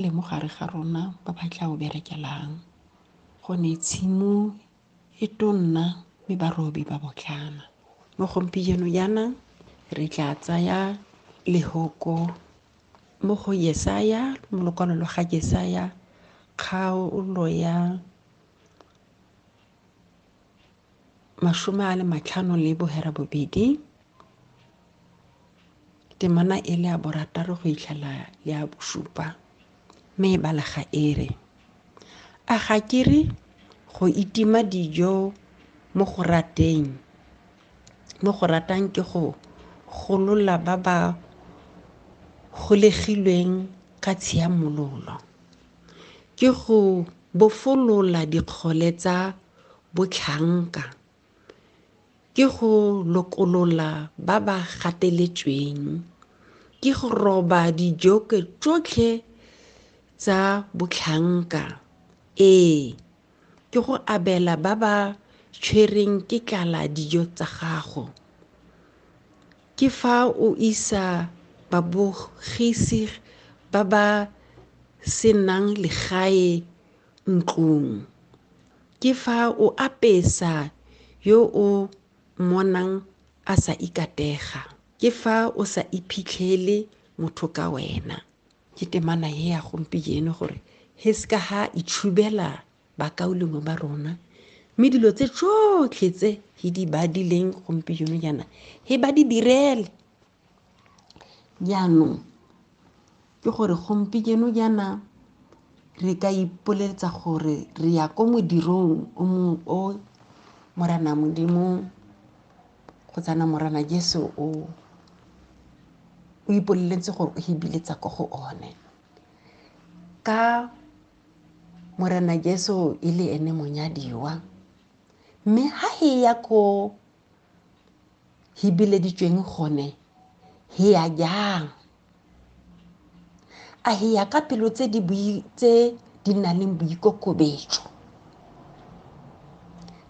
le mo gare ga rona ba ba tla o berekelang gone tshimo e tonna mme barobi ba botlana mo gompieno jaana re tla tsaya lehoko mo go yesaya mo lokwalo lwa ga jesaya kgaolo ya mashome a le matlhano le bohera bobedi temana e le ya borataro go itlhela le ya bosupa mme e balega e re a ga ke re go itima dijo mo go rateng mo go ratang ke go golola ba ba golegilweng ka tshiamololo ke go bofolola dikgole tsa botlhanka, ke go lokolola ba ba gateletsweng, ke go roba dijoke tsotlhe tsa botlhanka, ee, ke go abela ba ba tshwereng ke tlala dijo tsa gago. Ke fa o isa babogisi ba ba senang legae ntlong. Ke fa o apesa yo o monang a sa ikatega. Ke fa o sa iphitlhele motho ka wena. Ke temana e ya gompieno gore he se ka ha itshubela bakaulengwe ba rona mme dilo tse tsotlhe tse he di badileng gompieno jaana he ba di direle jaanong ke gore gompieno jaana re ka ipoletsa gore re ya ko modirong o mongwe o morana modimo go tsana morana jesu o o ipoleletse gore o hebiletse ko go one ka Morena Jesu e le ene monyadiwa. Mme ha he ya ko he bileditsweng gone, he ya jang? A he ya ka pelo tse di bui tse di nang le boikokobetso.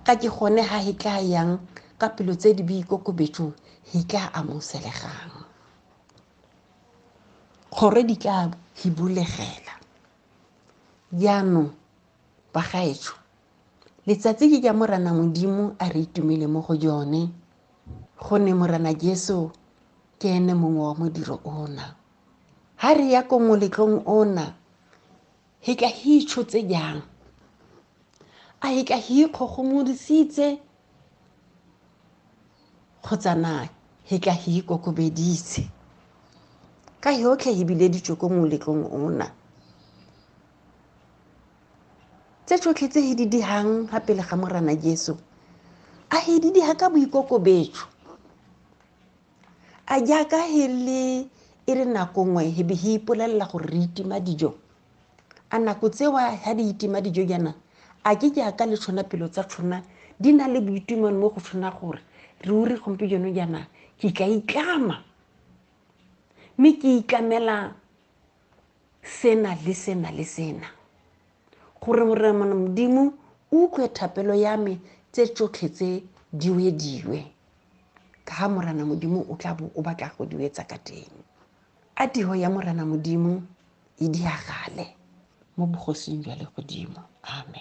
Ka ke gone ha he tla yang ka pelo tse di boikokobetso, he tla amoselegang. gore di tla hibulegela jaanong bagaetsho letsatsi ke ja morana modimo a re itumele mo go jone go ne morana jesu ke ene mongwe wa modiro ona ha re ya ko moletlong ona he ka hi itshotse jang a he ka hi ikgogomodisitse kgotsa na he tla he ikokobeditse ka yotlhe he bileditswe ko moletlong ona tse tsotlhe tse he di dihang ga pele ga morana jesu a he di diha ka boikokobetso a jaaka he le e re nako nngwe he be he ipolelela gore re itima dijo A nako tsewa ha di itima dijo jaana, a ke jaaka le tshona pelo tsa tshona di na le boitumano mo go tshona gore ruri gompieno jaana ke tla itlama mme ke itlamela sena le sena le sena gore moremana modimo o utlwe thapelo ya me tse tsotlhe tse di wediwe ka ga morana modimo o tla bo o batla go di wetsa ka teng A tiro ya Morena Modimo e diragale mo bogosing jwa legodimo. Amen.